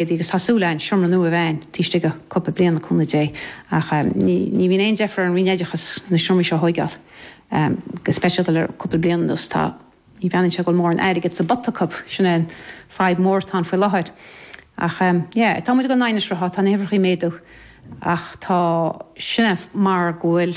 Agus tá súil a'inn seomra nua a bheith a'inn taobh istigh de cúpla bliain le cúnamh Dé ach eh ní bhíonn aon deifir ar an Roinn Oideachas na seomraí seo a thóigeáil em go speisialta le cúpla bliain anuas tá, ní bhreathnaíonn sé go bhfuil mórán airgead sa bpota acub, sin é an fadhb mór atá ann faoi láthair. Ach em yeah tá muid ag goil in aghaidh an tsrutha, tá na huimhreachaí ag méadú ach tá, sin é mar go bhfuil,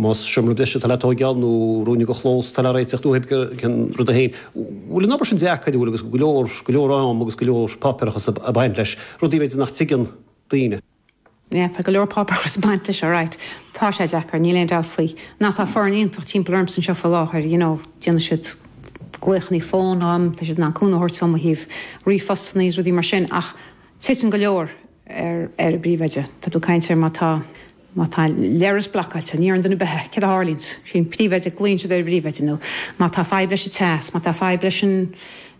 Más seomra breise atá le tóigeáil nó ruainne de chlós atá le réiteach uathu ag an rud é féin. Bhfuil an obair sin deacair an bhfuil agus go leor, go leor am agus go leor páipéarachas ag baint leis, rudaí b'fhéidir nach dtuigeann daoine? Yeah, tá go leor páipéarachas ag baint leis, alright. Tá sé deacair, níl aon dabht faoi. Now tá foireann iontach timpeall ormsa anseo faoi láthair, you know, déanann siad glaochanna fóin dhom, tá siad in ann cúnamh a thabhairt dhom ó thaobh ríomhphostanna agus rudaí mar sin ach titeann go leor ar, ar an bpríomhoide. Tá tú ag caint ar má tá. Má tá leithreas blocáilte, ní iarrann duine ar bith, céard a tharlaíonns? Is é an príomhoide, glaonn siad ar an bpríomhoide, nó má tá fadhb leis an teas, má tá fadhb leis an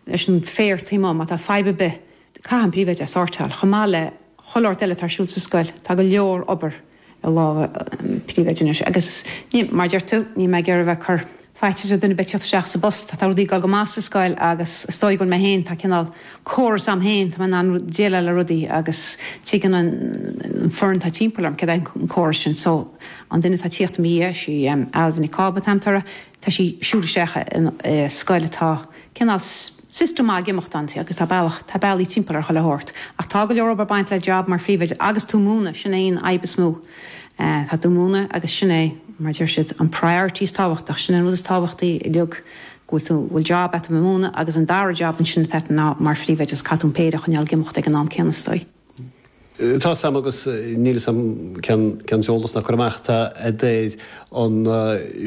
leis an féar taobh amuigh, má tá fadhb ar bith, caithfidh an príomhoide é a shórtáil, chomh maith le chuile shórt eile atá ar siúl sa scoil. Tá go leor obair i lámha an príomhoide anois, agus ní, mar a deir tú, níl mé ag iarraidh a bheith ag cur. Faitíos ar dhuine a bheith ag tíocht isteach sa bpost, tá rudaí ag dul go maith sa scoil agus is dóigh go bhfuil mé féin, tá cineál córas agam féin, tá mé in ann déileáil le rudaí agus tuigeann an foireann atá timpeall orm céard é an córas sin. So, an duine atá ag tíocht i mo dhiaidh, sí Ailbhe Nic Cába, tá an t-ádh uirthi, tá sí ag siúl isteach i scoil atá cineál, system ag imeacht inti agus tá bealach, tá bealaí timpeall ar chuile shórt ach tá go leor obair ag baint le job mar phríomhoide agus tú ag múineadh, sin é an fhadhb is mó. Eh, tá tú ag múineadh agus sin é, mar a deir siad, an priority is tábhachtach, sin é an rud is tábhachtaí uilig, go bhfuil tú, go bhfuil job a'at a bheith ag múineadh agus an dara job ansin atá a'at ná mar phríomhoide agus caithfidh tú an péire a choinneáil ag imeacht ag an am céanna is dóigh. Tá 'fhios a'm agus níl 'fhios a'm cén t-eolas ná cur amach atá a'at ar an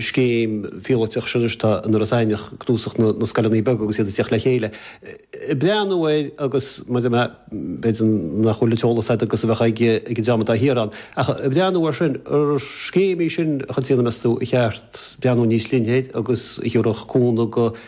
scéim phíolóiteach sin anois atá in Iorras Aithneach cnuasach na na scoileanna beaga agus iad ag tíocht le chéile ag breathnú air agus maidir le b'fhéidir nach bhfuil an t-eolas agat agus a bheadh ag ag an dream atá thiar ann ach ag breathnú ar sin an scéim í sin a chuid déanamh meas tú ar cheart breathnú níos leithne air agus a thiúrfadh cúnamh go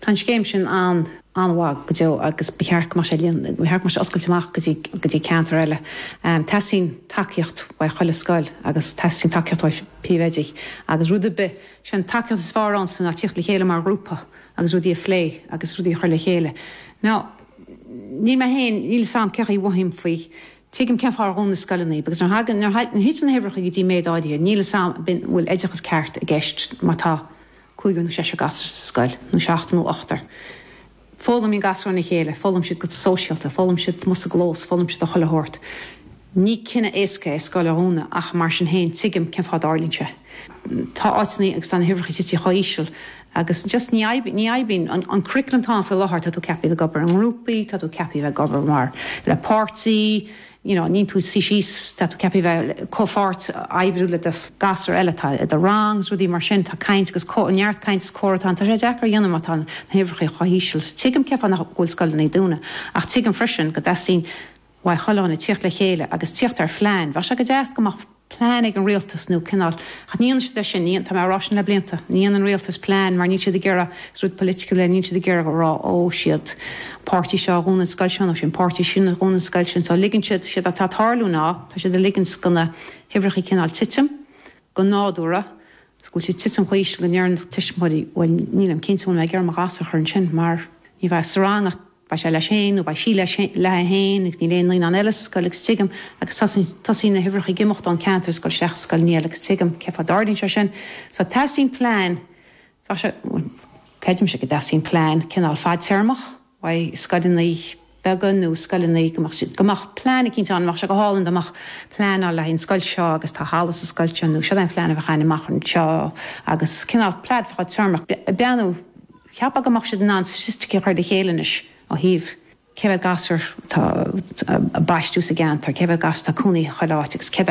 Tá an scéim sin an-mhaith go deo agus ba cheart go mbeadh sé oscailte amach go dtí ceantair eile. Teastaíonn tacaíocht uaidh chuile scoil agus teastaíonn tacaíocht uaidh príomhoidí agus rud ar bith. Sé an tacaíocht is fearr ansin ná tíocht le chéile mar ghrúpa agus rudaí a phlé agus rudaí a chur le chéile. Níl mé féin, níl 'fhios a'm cé chaoi a mhothaím faoi, tuigim cén fáth ar dhún na scoileanna iad agus nuair a thiteann na huimhreacha go dtí méid áirithe, níl 'fhios a'm an bhfuil oideachas ceart i gceist má tá, cúigear nó seisear gasúr sa scoil, nó seachtar nó ochtar. Foghlaimíonn gasúir óna chéile, foghlaim siad go sóisialta, foghlaim siad amuigh sa gclós, foghlaim siad ó chuile shórt. Ní cinneadh éasca é scoil a dhúnadh ach, mar sin féin, tuigim cén fáth a dtarlaíonn sé. Tá áiteanna agus tá na huimhreacha tite chomh híseal agus just ní oibríonn, ní oibríonn. An curriculum atá ann faoi láthair, tá tú ceaptha a bheith ag obair i ngrúpaí, tá tú ceaptha a bheith ag obair mar, le páirtí, you know níl tú ag suí síos tá tú ceaptha bheith ag comhpháirt oibriú leis na gasúir eile atá i do rang is rudaí mar sin tá caint agus neart caint is comhrá tá sé deacair a dhéanamh má tá na huimhreacha chomh híseal so tuigim cén fáth nach go bhfuil scoileanna ag dúnadh ach tuigim freisin go dteastaíonn Mhaigh Chuileáin a thíocht le chéile agus tíocht ar phlean bheadh sé go deas go mbeadh plean ag an rialtas nó cineál, ach ní ionann é sin, ní, tá mé á rá sin le blianta, ní dhéanann rialtas plean mar níl siad ag iarraidh, is rud political é, níl siad ag iarraidh a rá ó, siod é an páirtí seo a dhún an scoil seo nó sin é an páirtí sin a dhún an scoil sin so ligeann siad, séard atá ag tarlú ná tá siad ag ligint do na huimhreacha cineál titim go nádúrtha, go bhfuil siad ag titim chomh híseal go ndeireann tuismitheoirí bhuel nílim cinnte an bhfuil mé ag iarraidh mo ghasúr a chur ansin mar ní bheidh sa rang ach Beidh sé leis féin, nó beidh sí leis, léi féin agus níl aon naíonán eile sa scoil agus tuigim, agus tosaíonn, tosaíonn na huimhreacha ag imeacht ón gceantar, scoil seachas scoil amháin agus tuigim cén fáth a dtarlaíonn sé sin. So teastaíonn plean, bheadh sé, bhuel creidimse go dteastaíonn plean cineál fadtéarmach, beidh scoileanna beaga nó scoileanna, go mbeadh siad, go mbeadh plean eicínt ann, bheadh sé go hálainn dá mbeadh plean ann le haghaidh an scoil seo agus tá halla sa scoil seo nó siod é an phlean a bheadh ann amach anseo agus cineál plean fadtéarmach, beannú. Cheapfá go mbeadh siad in ann staitisticí a chur le chéile anois ó thaobh cé mhéad gasúr atá á mbaisteadh sa gceantar, cé mhéad gasúr atá ag cónaí i chuile áit agus cé mhéad